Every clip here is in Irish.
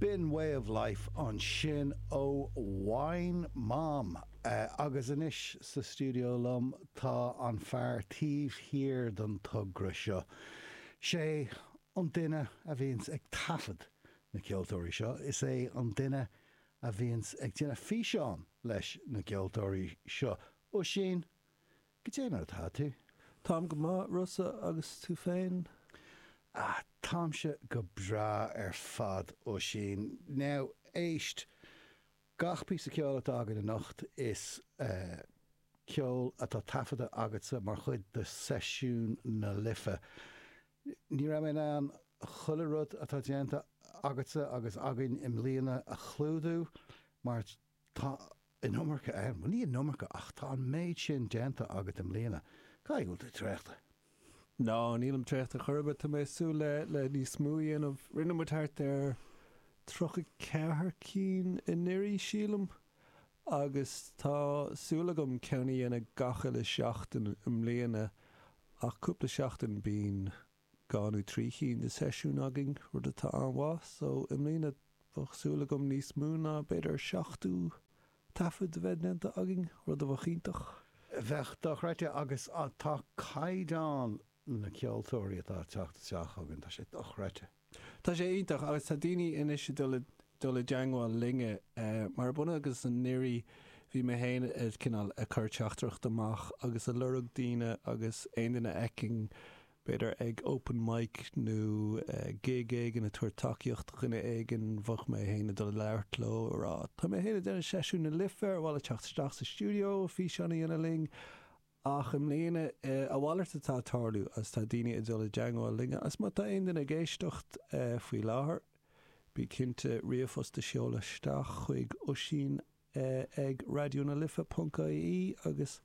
B'in Way of Life ansin ó Wine Mom. Agus anois sa stiúideo liom tá an fear taobh thiar den togra seo. 'Sé an duine a bhíonns ag taifead na ceoltóirí seo, is é an duine a bhíonns ag déanamh físeán leis na gceoltóirí seo, Oisín. Goidé mar atá tú? Táim go maith, Rossa, agus tú féin? Ah, táimse go breá ar fad, Oisín. Now, éist, gach píosa ceoil atá againn anocht, is eh. ceol atá taifeadta agatsa mar chuid do Seisiún na Life. Ní raibh mé in ann chuile rud atá déanta agatsa agus againn i mbliana a chlúdú, mar tá, an iomarca ann. Bhuel, ní an iomarca, ach tá an méid sin déanta agat i mbliana, caithfidh go bhfuil tú traochta. Ná, nílim traochta chor ar bith, tá mé ag súil le, le níos mó a dhéanamh. Rinne muid thart ar tríocha ceathair cinn anuraidh, sílim, agus tá súil agam ceann a dhéanamh gach uile sheachtain i mbliana, ach cúpla seachtain bíonn dhá nó trí chinn de sheisiúin againn, rud atá an-mhaith, só i mbliana bheadh súil agam níos mó ná b'fhéidir seachtú taifead a bheith déanta againn, rud a bheadh iontach. Bheadh dochreidte agus tá caighdeán na ceoltóirí atá ag teacht isteach chugainn, tá sé dochreidte. Tá sé iontach agus tá daoine anois ag dul i dul i dteangmháil linne mar an bhliain seo agus anuraidh bhí mé féin ag cineál ag cur teachtaireacht amach agus ag lorg daoine agus aon duine a fheicfinn b'fhéidir ag open mic nó gig éigin ag tabhairt tacaíocht do dhuine éigin bheadh mé féin ag dul ag labhairt leo ag rá tá mé féin ag déanamh Seisiún na Life ar mhaith leat teacht isteach sa stiúideo físeán a dhéanamh linn Ach i mbliana, a mhalairt atá ag tarlú agus tá daoine ag dul i dteangmháil linn agus má tá aon duine ag éisteacht faoi láthair, bí cinnte ríomhphost a sheoladh isteach chuig Oisín ag raidiónalife ponc ie agus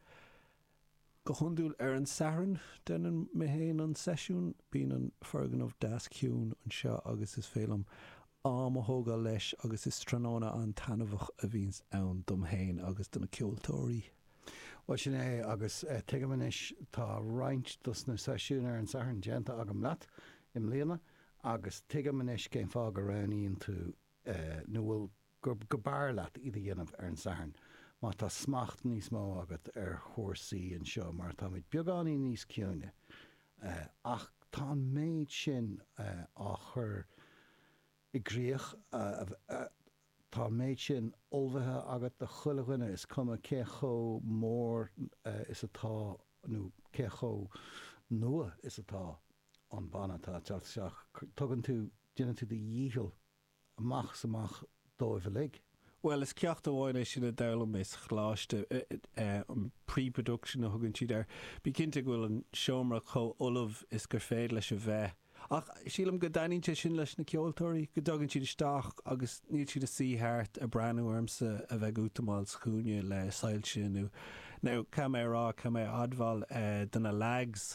go hiondúil ar an Satharn, deineann mé féin an seisiún, bíonn an foirgneamh deas ciúin anseo agus is féidir liom am a thógáil leis agus is tráthnóna an-taitneamhach a bhíonns ann dom féin agus do na ceoltóirí. Bhuel, sin é, agus tuigim anois, tá roinnt dos na seisiúin ar an Satharn déanta agam leat i mbliana, agus tuigim anois cén fáth go roghnaíonn tú, nó bhuel, gur, go b'fhearr leat iad a dhéanamh ar an Satharn, mar tá smacht níos mó agat ar chúrsaí anseo, mar táimid beagáinín níos ciúine, ach tá an méid sin á chur i gcrích, Tá an méid sin ullmhaithe agat do 'chuile dhuine, is cuma cé chomh mór is atá nó cé chomh nua is atá an banna atá ag teacht isteach. Tugann tú, déanann tú do dhícheall amach is amach dóibh uilig. Bhuel, is ceacht amháin é sin a d'fhoghlaim mé sa choláiste, an pre-production a thugann siad air. Bí cinnte go bhfuil an seomra chomh ullamh is gur féidir leis a bheith. Ach sílim go dtaitníonn sé sin leis na ceoltóirí, go dtagann siad isteach agus níl siad ag suí thart ag breathnú ormsa a bheith ag útamáil sa chúinne le soilse nó, nó caithfidh mé a rá, caithfidh mé a admháil do na leaids,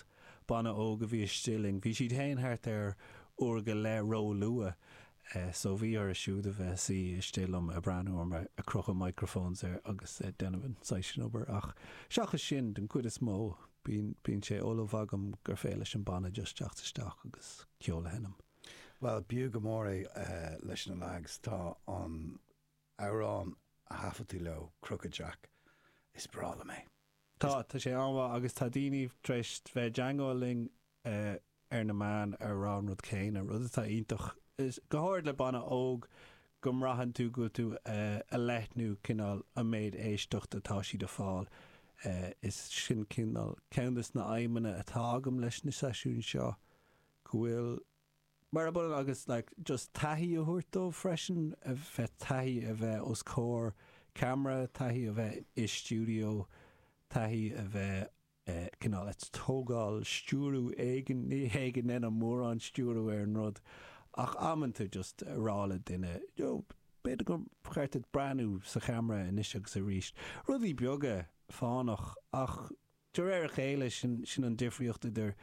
banna óg a bhí istigh linn, bhí siad féin thart ar uair go leith róluath. so bhí orthu siúd a bheith ina suí istigh liom ag breathnú orm ag crochadh microphones agus ag déanamh an saghas sin obair ach seachas sin, den chuid is mó, bíonn sé ullamh agam gur féidir leis an banna just teacht isteach agus ceol a sheinm. Bhuel, b'fhiú go mór é leis na leaids agus, tá an t-amhrán a thaifead tú leo, Crooked Jack, is breá liom é. Tá, tá sé an-mhaith agus tá daoine tar éis bheith ag teagmháil linn ar na meáin a rá an rud céanna, rud atá iontach. Go háirid le banna óg go mbraitheann tú go bhfuil tú ag leathnú cineál an méid éisteacht atá siad ag fáil. Is sin cineál ceann de na haidhmeanna atá agam leis na seisiúin seo, go bhfuil Mar ab ionann agus like just taithí a thabhairt dóibh freisin, a bheith taithí a bheith os comhair ceamara, taithí a bheith i stiúideo, taithí a bheith eh, cineál ag tógáil stiúradh éigin, ní hé go ndéanaim mórán stiúradh ar an rud ach amanta just a rá le duine you know b'fhéidir gur cheart duit breathnú sa cheamara anois agus arís, rudaí beaga fánach ach De réir a chéile, sin, sin an difríocht idir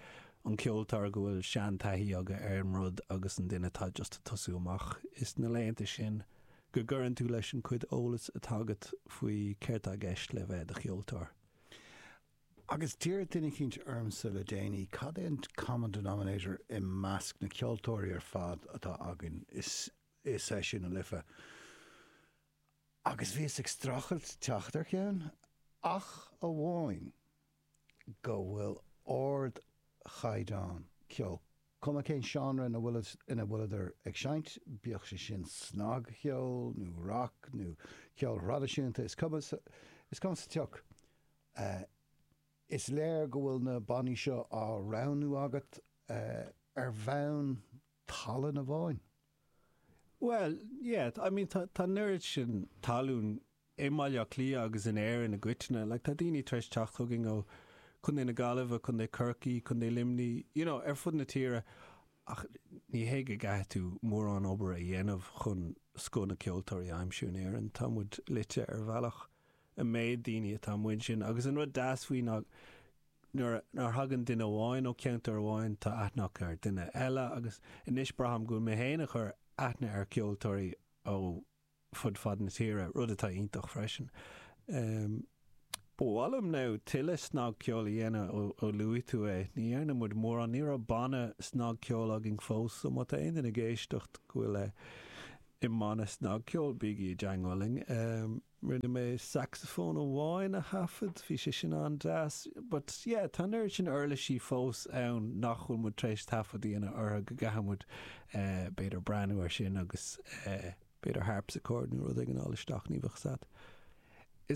an cheoltóir go bhfuil seantaithí aige ar an rud agus an duine atá just ag tosú amach. Is na laethanta sin go gcuireann tú leis an chuid eolas atá agat faoi céard tá i gceist le bheith i do cheoltóir. Agus d'fhiafraigh duine eicínt ormsa le déanaí cad é an common denominator i measc na ceoltóirí ar fad atá againn, is, is é sin an Life. agus bhíos ag streachailt teacht ar cheann, ach amháin go bhfuil ardchaighdeán ceoil, cuma cén seánra ina bhfuileadar ag seinnt, bíodh sé sin snagcheol nó rac nó ceol thraidisiúnta, is cuma, is cuma sa tsioc. Is léir go bhfuil na bannaí seo á roghnú agat ar bhonn. Tallann ar fáil? Bhuel, yeah, I mean tá an oiread sin tallainne i mBaile Átha Cliath agus in Éirinn i gcoitinne, like tá daoine tar éis teacht chugainn ó Chontae na Gaillimhe, Contae Chorcaí, Contae Luimní, you know, ar fud na tíre ach ní hé go gcaithfidh tú mórán obair a dhéanamh chun scoth na ceoltóirí a aimsiú in Éirinn, tá muid loitthe ar bhealach. an méid daoine atá amuigh ansin agus an rud deas faoi ná nuair a thagann duine amháin ó cheantar amháin tá aithne acu ar duine eile agus anois braithim go bhfuil mé féin ag cur aithne ar cheoltóirí ó fud fad na tíre, rud atá iontach freisin. Em. Ba mhaith liom now tuilleadh snagcheoil a dhéanamh ó ó luaigh tú é. Ní dhearna muid mórán, ní raibh banna snagcheoil againn fós so má tá aon duine ag éisteacht go bhfuil i mbanna snagcheoil bígí i dteagmháil linn. Em. Rinne mé sacsafón amháin a thaifead, bhí sé sin an-deas. But yeah, tá an oiread sin uirlisí fós ann nach bhfuil muid tar éis taifead a dhéanamh orthu go gcaithfidh muid b'fhéidir breathnú air sin agus b'fhéidir harpsichord nó rud éigin a fháil isteach, ní bheadh a fhios agat.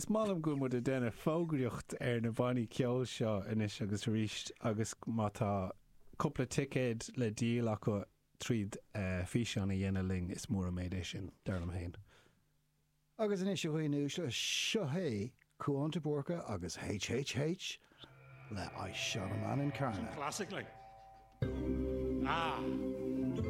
Is maith liom go bhfuil muid ag déanamh fógraíocht ar na bannaí ceoil seo anois agus arís agus má tá cúpla ticéad le díol acu tríd físeán a dhéanamh linn, is mór an méid é sin, dar liom fhéin. Agus anois, a dhaoine uaisle, seo é Cuán de Búrca agus HHH le I Shot a Man in Carna. Some classic like. Ah!